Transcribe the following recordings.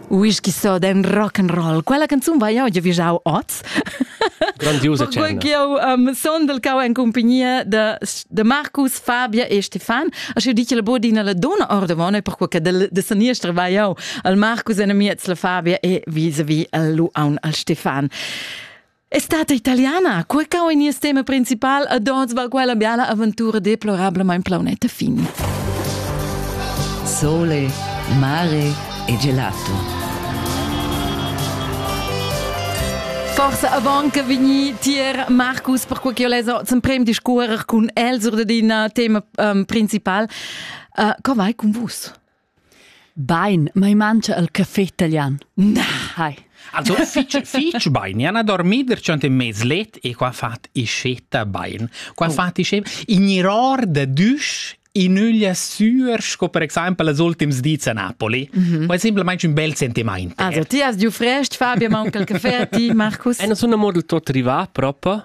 Whisky Soden Rock'n'Roll. Quella canzun vai jau giavischau oz. Grandiosa cena. Eu um, son del cau en compagnia de, de Marcus, Fabia e Stefan. Aschi di che la bodina la dona ordavona per quella de, de saniestra vai jau al Marcus en miez la Fabia e vis-a-vis al Lu aun al Stefan. È stata italiana, quel cau in nies tema principal ad ons va quella biala aventura deplorablemain plaunetta fini. Sole, mare e gelato. Forse avant che vegni tier Marcus per quel che ho leso zum prem discuorer cun el sur de dina tema um, principal. Uh, co vai con vus? Bain, mai mangia el caffè italian. Na, hai. Also fich, fich bain. Io ana dormi perciò in mez let e qua fat iscetta bain. Qua oh. fat iscetta in iror da düsch in öglia sur, sco per exempel les ultims dis a Napoli. Mm -hmm. Quai è semplicemente un bel sentimento. Also, ti hast giù frest, Fabio, manca il caffè, ti, Markus? È una model tot rivà proprio.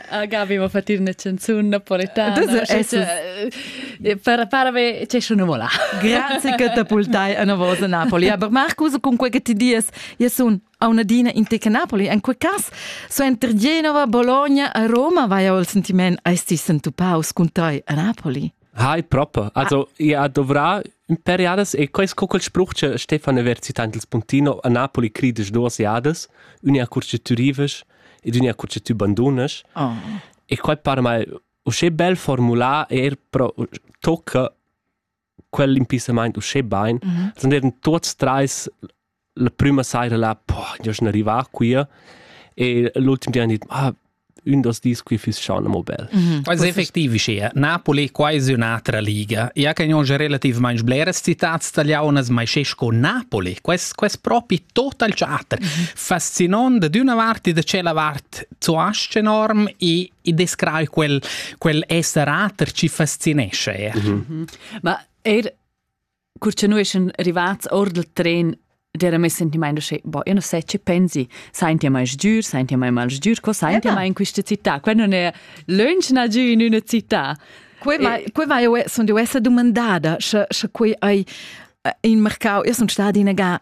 Gavi va fatir una canzone napoletana. para, para be c'è un mola. Grazie che ti pultai a una voce Napoli. Aber Marcus, con quel che ti dies, io sono a una dina in teca Napoli. In quel caso, su inter Genova, Bologna e Roma vai ho il sentiment esti sentupaus con te a Napoli. Hai proper. Also, io dovrà in periodas e quest co quel spruch che Stefan Averzi tanto il spuntino a Napoli crides duas jadas, unia curce turives e ginia cur che tü bandunas. Oh. E quai para mai uschè bel formular e er pro tocca quell'impissamaint uschè bain. Mm -hmm. Sun eran tuots trais la prüma saira là, boh, io sun arrivà qui e l'ultim di han dit, ah, un dos dis qui fis schon amo bel. Mm -hmm. Quasi effektiv sia. Napoli quasi un'altra liga. Ja che non relativamente bleras citats tagliaunas, ma è sco Napoli. Quest, quest proprio total teatro. Mm -hmm. fascinant da d'una vart e da cella vart zu asche enorm e, e descrai quel, quel esserater ci fascinesce er. Mm -hmm. Ma er cur che noi sind arrivati or del tren Dera me sentimaint che, boh, io non sai che pensi, senti mai sgiur, senti mai mal sgiur, co senti mai in questa città? Qua non è lunchna giù in una città. Quei vai, e... quei vai eu, sono deu essere domandada, se, se quei hai eh, in mercau, io sono stata in aga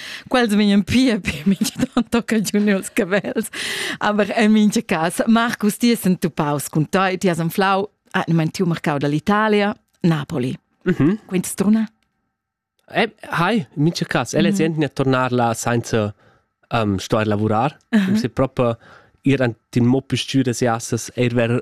quels vegnan pia per mintga tanto che juniors che vels. Aber en mincha cas, Marcus, ti has entupaus cun toi, ti has anflau ah, tiu mercau dall'Italia, Napoli. Mm -hmm. Quint struna? Eh, hi, in mincha cas, el mm -hmm. è mhm. a tornar là senza um, stuer lavurar, uh -huh. um, se proprio ir an tin mo più stüre se assas er ver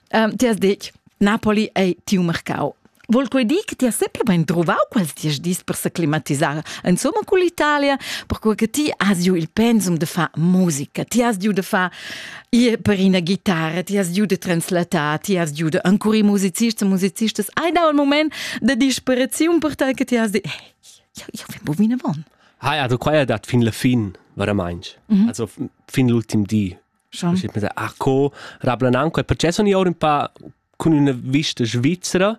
um, ti has detg, Napoli ei tiu mercau. Vol quei dir che ti has sempre ben trovau quels dies dis per se climatisar, insomma con l'Italia, perché che ti has giu il pensum de far musica, ti has giu de far ir per ina guitarra, ti has giu de translatar, ti has giu de ancora musicists e musicistas. Hai dau il moment de disperaziun per te che ti has detto, io, io vem bu vinavon. Hai, also qua ja dat fin la fin, veramente. Mhm. Also fin l'ultim di Schon. Ich bin ach co, rablan anche, il processo ni ora un po' con una vista svizzera.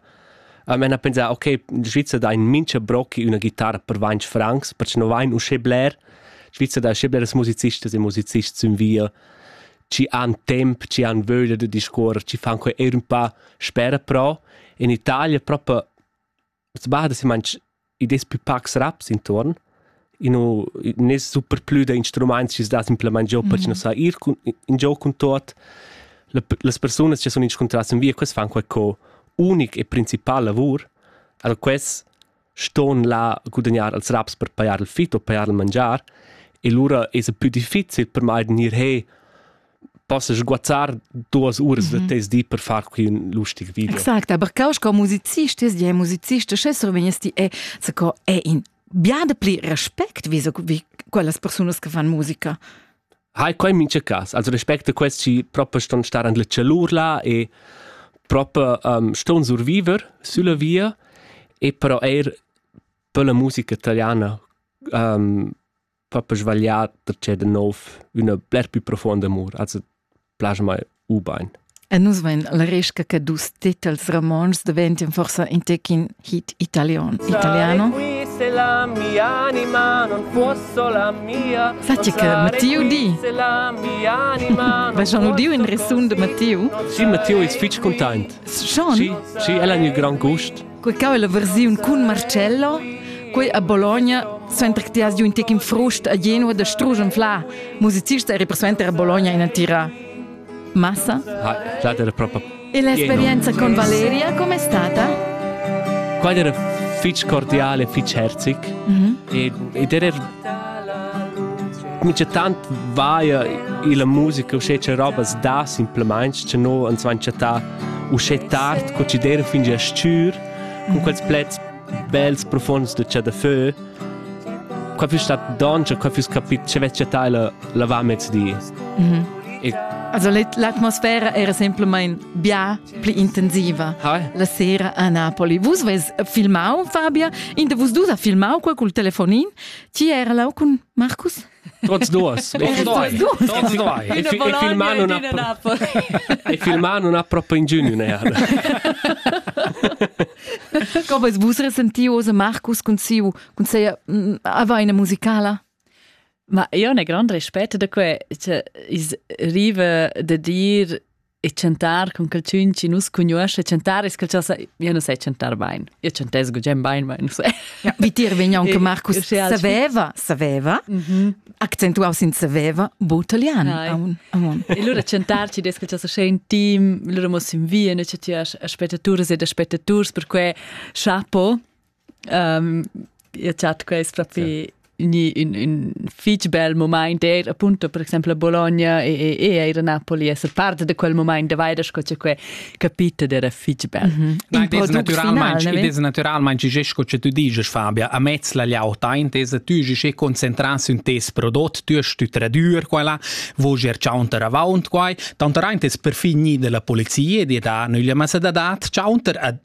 A me na pensa, ok, in Svizzera dà in mincha brocchi una chitarra per 20 francs, perché non vai un schebler. Svizzera dà schebleres musicistas e musicists in via ci han temp, ci han vöglia da discuorrer, ci fan quei er un po' spera però. In Italia proprio Ins bada si manch id es plü pacs raps intuorn. I nu nun es super plü da instrumaints chi's dà simplamaing giò per chi nu sa ir cun in giò cun tuot. Le las persunas chi sun inscuntrà sün via, quels fan qualco unic e principal lavur. Alura quels ston là gudagnar als raps per pajar il fit o pajar il mangiar e lura esa pü difficil per mai da gnir he possas guazzar duas uras mm -hmm. da mhm. tes di per far quei un lustig video. Exact, aber kaus co musicist ist ja musicist che so vegnes ti e se co è in biade pli respect wie, so, wie quellas personas che fan musica. Hai quei mince cas, also respecte questi proprio ston stare an le celur là e proprio um, ston survivere sulla via e però er per la musica italiana um, fa per sbagliar da c'è da nov una bler più profonda amor, also plasma mai ubain. E nus vein la resca che dus titels romans diventien forsa in tecin hit italion, italiano. la mia anima non può la mia Fatti che Matteo di. Va Jean Diu in resun de Matteo? Sì, Matteo ist fitch content. Schon? Sì, sì, el ha un gran gust. Quei cau è la versiun cun Marcello, quei a Bologna, suenter che ti has giù in tec in frust a Genua da strusch anfla, musicista eri persuenter a Bologna ina tira. Massa? Ah, stata era proprio E l'esperienza con Valeria com'è stata? Quella era fitch cordiale, fitch herzig. Mhm. E, ed era mi c'è tant vaia e la musica, o c'è c'è roba da simplemente, c'è no, ans van chattà uschè tard co chi d'eira fin gia s-chür, cun quels plets bels profuonds da chadafö. Qua füss stat doncha, qua füss capit cha vess chattà la lavamezdi. Mhm. E Also l'atmosfera era semplamain bien pli intensiva Ha? la sera a Napoli. Vus vus filmau, Fabia, in de vus dus ha filmau qua col telefonin. Ti era là cun Marcus? Trotz duas. Trotz doi. E filmar non ha proprio ingegno ne. Come vus resenti ose Marcus cun siu cun seia avaina musicala? Ma io ne grand respetto da que, cioè is rive de dir e chantar con quel tun chi nus cugnuoscha chantar es quel cha io nu sai chantar bain io chantess gugent bain ma nu sai ja, vitir vegna anche Marcus saveva saveva accentuaus in saveva bu italian aun aun e lura chantar ci des quel cha in team lura mos in via ne cha ti aspettaturs ed aspettaturs per que chapo Io chat quest propi ni ün, ün fich bel mumaint eir appunto per exaimpel a Bologna e, e, e eir a Napoli esser part da quel mumaint da vaida sco cha que capita d'era fich bel. Mm -hmm. Ma ed es natüralmaing, ed es natüralmaing che sco cha tu diges Fabia, amez la liauta intesa tü che concentras ün tes prodot, tü hast tü tradür quella, voger chaunter avaunt quai, tanter aint es perfin gnida la polizia di da nüglia massa da dat chaunter a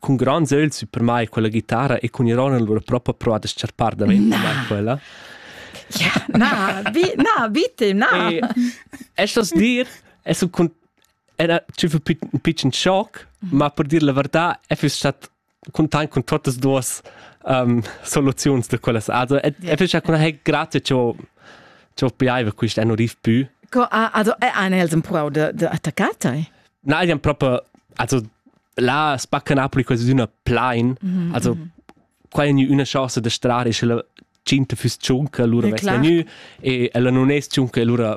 Cun gronds ögls per mai quella guitarra e cun ironia lura propa provat da s-charpar davent da mai quella. Ja, na, bi, na, bitte, na. E, estas dir, es un cun era tschü für un pitschen schock, ma per dir la verdad, e füss stat content con totas duas um, soluziuns da quellas. Also, e yeah. e fece con ha grazie cho cho piaiva quist anno riv pü. Co, ah, also, è ein els un prau de, de attaccata? Na, jan proper, also la spacca Napoli quasi d'una plain mm -hmm. also qua è una chance da strare sche la cinta fuss ciunca allora vess vegnu e ella non es ciunca allora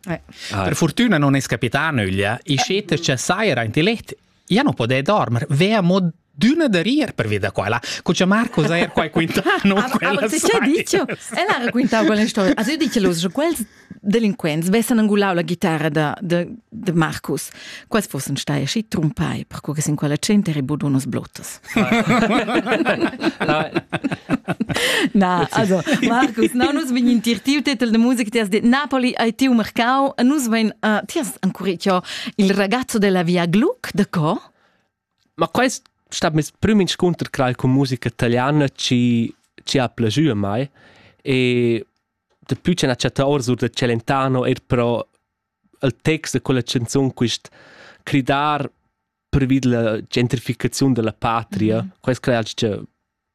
eh. ah. Per fortuna non es capità nöglia e scete c'è saira in tilet ja non poder dormir vea mod d'una da rir per via da quella. Cuccia Marco sei qua quintano quella sai. Ella raccontava quella storia. Also io dice los, quels delinquents vessan angulau la guitarra da, de, de Marcus. Quals fossen stai aschi trumpai, perco che sin quella gente eri budunos blottas. Na, also, Marcus, no, nus vegn in tirtiu titel de musica, ti has dit Napoli hai tiu mercau, e nus vein, uh, ti hast ancora il ragazzo della via Gluck, de co? Ma quest stat meis prüm inscunter cral cun musica italiana chi chi ha plajü a mai e dapü ch'el ha chattà orsur da Celentano eir però il text da quella chanzun quist cridar pervi della gentrificaziun della patria, quais crai alch cha